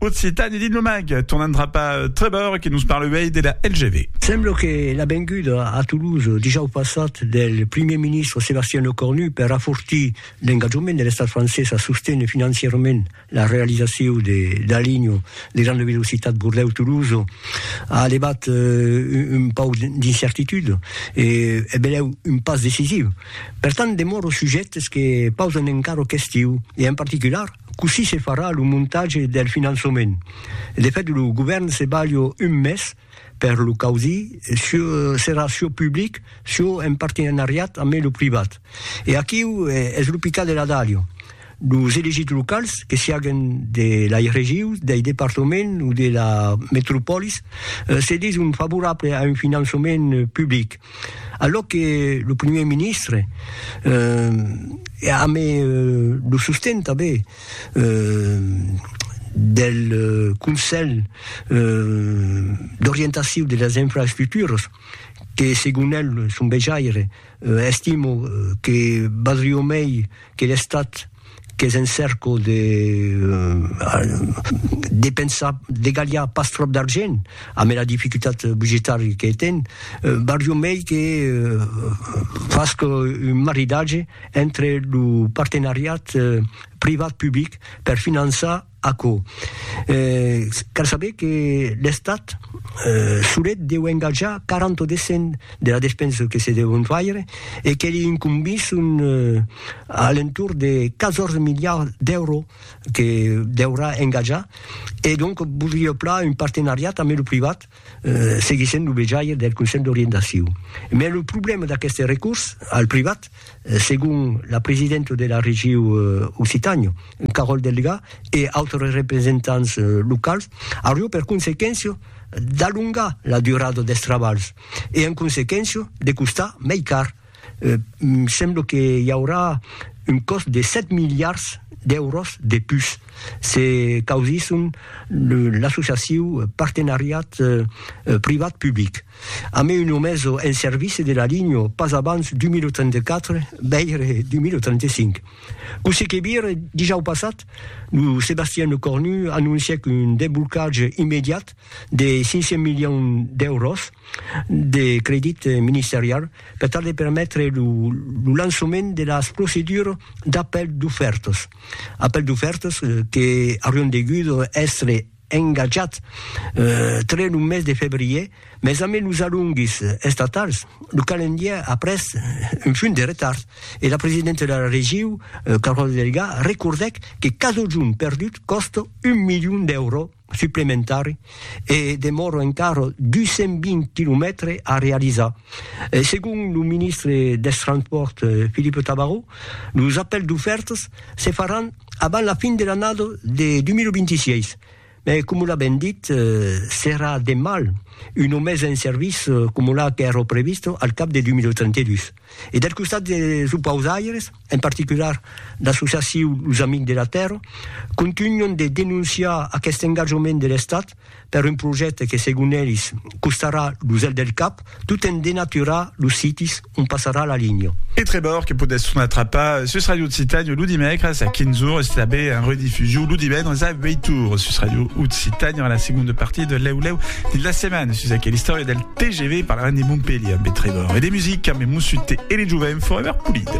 Occitània dins lo mag, tornant cap a Trevor que nos parle uèi de la LGV. Sembla que la venguda a Toulouse dijòus passat del primièr ministre Sébastien Lecornu per afortir l'engatjament de l'estat francés a sosténer financièrament la realizacion de la linha de granda velocitat Bordèu-Toulouse a levat un pauc d'incertitude e es benlèu un pas decisiu. Pertant demòra sujet es que pausan encara questiu e en particular, Cossí se farà lo montatge del finançament? De fèt, lo govèrn se balha un mes per lo causir, çò serà çò public, çò en partenariat amé lo privat. E aquiu es lo picat de la dalha. Los elegits locals, que siaguen de lai regius, dei departaments o de la metropòlis, se dison favorables a un finançament public. Alò que lo primièr ministre, eh, e amé lo sosten tanben eh, del Conselh d'orientaciu de las infraestructuras, que segon el, son vejaire, estimo que valdrió mei, que l'Estat qu'es en cèrco de depensar, de galhar pas tròp d'argent, amé la dificultat budgetària que ten, barriu mei que fasque un maridatge entre lo partenariat privat-public per finançar, Aquò, cal saber que l'Estat solet deu engatjar 40 o descent de la despensa que se deu faire e que li incombís un alentorn de 14 miliards d'èuros que deurà engatjar e donc vòldria plan un partenariat ambe lo privat seguissent lo vejaire del Conselh d'Orientacion. Mai lo problèma d'aqueste recurs al privat, segon la presidenta de la Regiu Occitània, Carole Delga, e autres representants locals, aurió per consequéncia d'alongar la durada dels trabalhs e, en consequéncia, de costar mai car. Sembla que i aurà un còst de 7 miliards d'èuros de pus se causisson l'associaciu Partenariat Privat-Public. A mai un omeso en servici de la linha pas abans 2034, veire 2035. Cossí que vire, dijau passat, lo Sébastien Lecornu anoncièc un desblocatge immediat de 500 milions d'èuros de credit ministerial per tal de permetre lo lançament de las procedures d'apèl d'ofèrtas, apèl d'ofèrtas que aurián degut èstre engatjats tre lo mes de febrièr, mas ambe los alonguis estatals, lo calendièr a pres un punt de retard e la presidenta de la regiu, Carole Delga, recordèc que casojun perdut còsta un milion d'èuros. suplementari e demòra encara 220 quilomètres a realizar. Segon lo ministre dels Transpòrts Philippe Tabarot, los apèls d'ofèrtas se faràn abans la fin de l'annada de 2026, mas coma l'a ben dit, serà de mal una mesa en serviç coma la qu'èra prevista al cap de 2032. E del costat dels opausaires? en particular l'associaciu Los Amics de la Tèrra, contunhon de denonciar aqueste engatjament de l'Estat per un projècte que, segon elis, costarà lo zel del cap, tot en denaturar los sitis ont passarà la linha. E Trevor que podèsson atrapar sus Ràdio Occitània lo dimècres a 15 ores e tanben en redifusion lo divendres a 8 ores sus Ràdio Occitània en la segonda partia de Lèu Lèu dins la setmana sus aquela istòria del TGV parlarem de Montpelhier amb e Trevor e de musica amb e Mossut T e de Jovent Forever Polide.